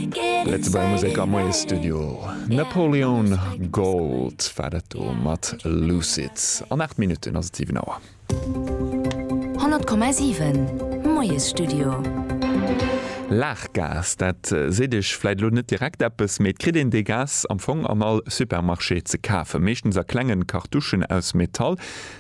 Lëtzebuerger Musek am Moie Studio. Napoleon Gold war dat do mat Lucid. An 8 Minutten ass et 7 Auer. 100,7 Moie Studio. Laachgas, dat seet Iech vläit elo net direkt eppes, mee et kritt een dee Gas am Fong an all Supermarché ze kafen. Meeschtens a klengen Cartouchen aus Metall.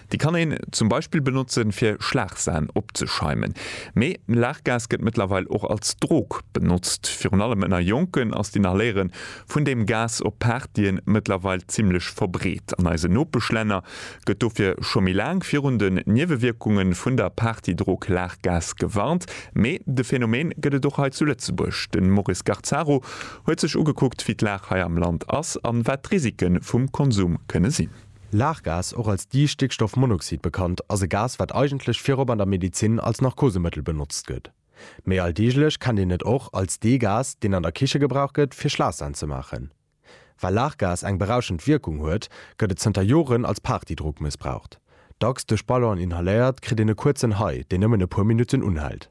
Déi kann een zum Beispill benotzen, fir Schlagsaaen opzescheimen. Mee Lachgas gëtt mëttlerweil och als Drog benotzt. Virun allem ënner Jonken ass d'Inhaléiere vun deem Gas op Partye mëttlerweil zimmlech verbreet. An eise Nopeschlänner gëtt dofir scho méi laang virun den Niewewierkunge vun der Partydrog Lachgas gewarnt. Mee de Phänomen gëtt et och hei zu Lëtzebuerg. De Maurice Garzaro huet sech ugekuckt, wéi d'Lag hei am Land ass an wat d'Risike vum Konsum kënne sinn. Laachgas, och als Di-Stickstoff-Monoxid bekannt, ass e Gas, wat eigentlech virop an der Medezin als Narkosemëttel benotzt gëtt. Méi alldeeglech kennt een et och als dee Gas, deen an der Kiche gebraucht gëtt, fir Schlaassahn ze maachen. Well Laachgas eng berauschend Wierkung huet, gëtt et zënter Joren als Partydrog mëssbraucht. Dacks duerch Ballon inhaléiert, kritt een e kuerzen High, deen nëmmen e puer Minutten unhält.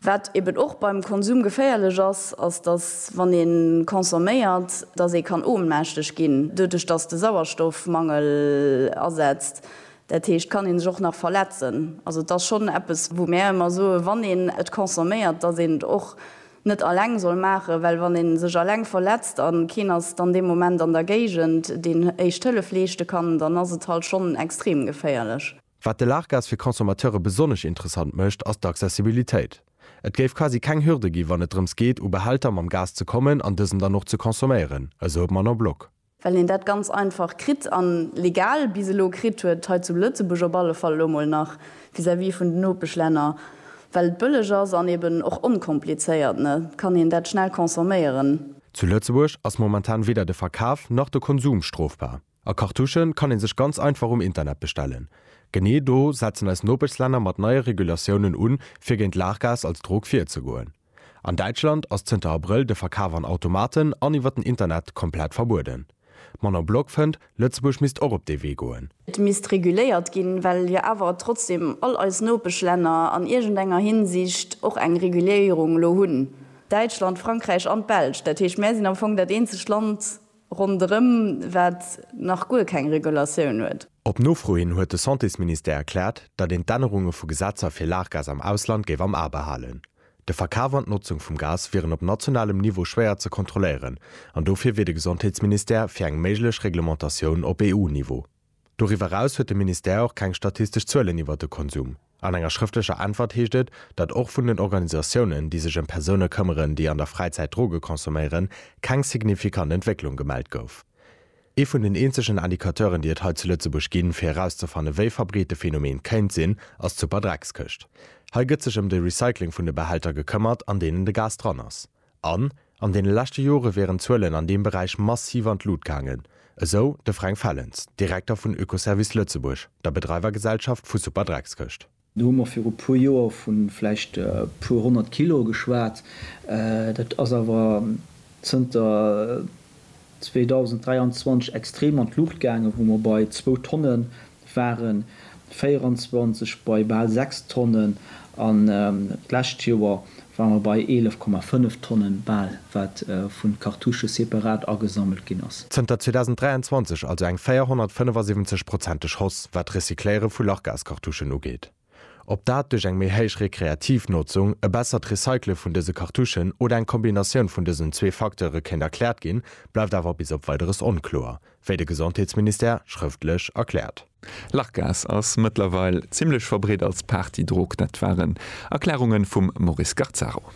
Wat eben och beim Konsum geféierlech ass, ass dass wann ee consomméiert, dass ee kann ohnmächteg ginn doduerch dass de Sauerstoffmangel asetzt. Dat heescht kann ee sech och nach verletzen. Also et ass schonn eppes wou mär ëmmer soe wann een et consomméiert, dass een et och net alleng soll maachen, well wann ee sech alleng verletzt a keen ass dann dee Moment an der Géigend deen éischt Hëllef leeschte kann, dann ass et halt schonn extrem geféierlech. Wat de Laachgas fir Consommateure besonnesch interessant mécht, ass d'Accessibilitéit. Et géif quasi keng Hürde gi wann et drëms geet, u Behälter mam Gas ze kommen an dësen dann och ze consomméieren, esou d'Manon Block. Well een dat ganz einfach kritt an legal bis elo kritt huet, hei zu Lëtzebuerg op alle Fall elo mol nach, vis-à-vis vun den Nopeschlänner, well et bëlleg ass an eben och onkomplizéiert, ne, kann een dat schnell consomméieren. Zu Lëtzebuerg ass momentan weder de Verkaf nach de Konsum strofbar. A Cartouchen kann een sech ganz einfach um Internet bestellen. Genee do setzen eis Nopeschslänner mat neie Regulatiounen un, fir géint Laachgas als Drog virzegoen. An Däitschland ass zënter Abrëll de Verkaf an Automaten an iwwer den Internet komplett verbueden. D'Manon Block fënnt, Lëtzebuerg misst och op dee Wee goen. Et misst reguléiert ginn, well jo awer trotzdeem all eis Nopeschlänner an iergendenger Hinsicht och eng Reguléierung elo hunn. Däitschland, Frankräich an d'Belsch. Dat heescht, mär sinn am Fong dat eenzegt Land, Ronderëm wat nach guer keng Regulatioun huet. Op Nofro hin huet de Santésministère erkläert, datt een d'Ännerunge vu Gesetzer fir Laachgas am Ausland géif am A behalen. De Verkaf an d'Notzung vum Gas wieren op nationalem Niveau schwéier ze kontrolléieren an dofir wier de Gesondheetsministère fir eng méiglech Reglementatioun op EU-Niveau. Doriwwer eraus huet de Ministère och keng statistesch Zuelen iwwert de Konsum. An enger schrëftlecher Äntwert heescht et, datt och vun den Organisatiounen, déi sech ëm Persoune këmmeren, déi an der Fräizäit Droge consomméieren, keng signifikant Entwécklung gemellt gouf. Ee vun den eenzegen Indicateuren, déi et hei zu Lëtzebuerg ginn, fir erauszefanne wéi verbreet de Phänomen kéint sinn, ass d'Superdreckskëscht. Hei gëtt sech ëm de Recycling vun de Behälter gekëmmert, an deenen de Gas dran ass. An an deene leschte Jore wieren d'Zuelen an deem Beräich massiv an d'Lut gaangen, esou de Fränk Fellens, Direkter vun Oekoservice Lëtzebuerg, der Bedreiwergesellschaft vu Superdreckskëscht. Do hu mer viru puer Joer vu vläicht e puer honnert Kilo geschwat. Dat ass awer zënter 2023 extrem an d'Luucht gaangen, wou mer bei zwou Tonne waren, 24 bei bal sechs Tonnen an d'lescht Joer ware mer bei 11,5 Tonnen bal, wat vun de Cartouche separat agesammelt ginn ass. Zënter 2023 also eng 475-prozenteg Hausse, wat d'Recycléiere vu Lachgascartouchen ugeet. Ob dat duerch eng méi héich rekreativ Notzung, e bessert Recycle vun dëse Cartouchen oder eng Kombinatioun vun dësen zwee Facteure kéint erkläert ginn, bleift awer bis op Weideres onkloer, wéi de Gesondheetsministère schrëftlech erkläert. Lachgas ass mëttlerweil zimmlech verbreet als Partydrog, dat waren Erklärunge vum Maurice Garzaro.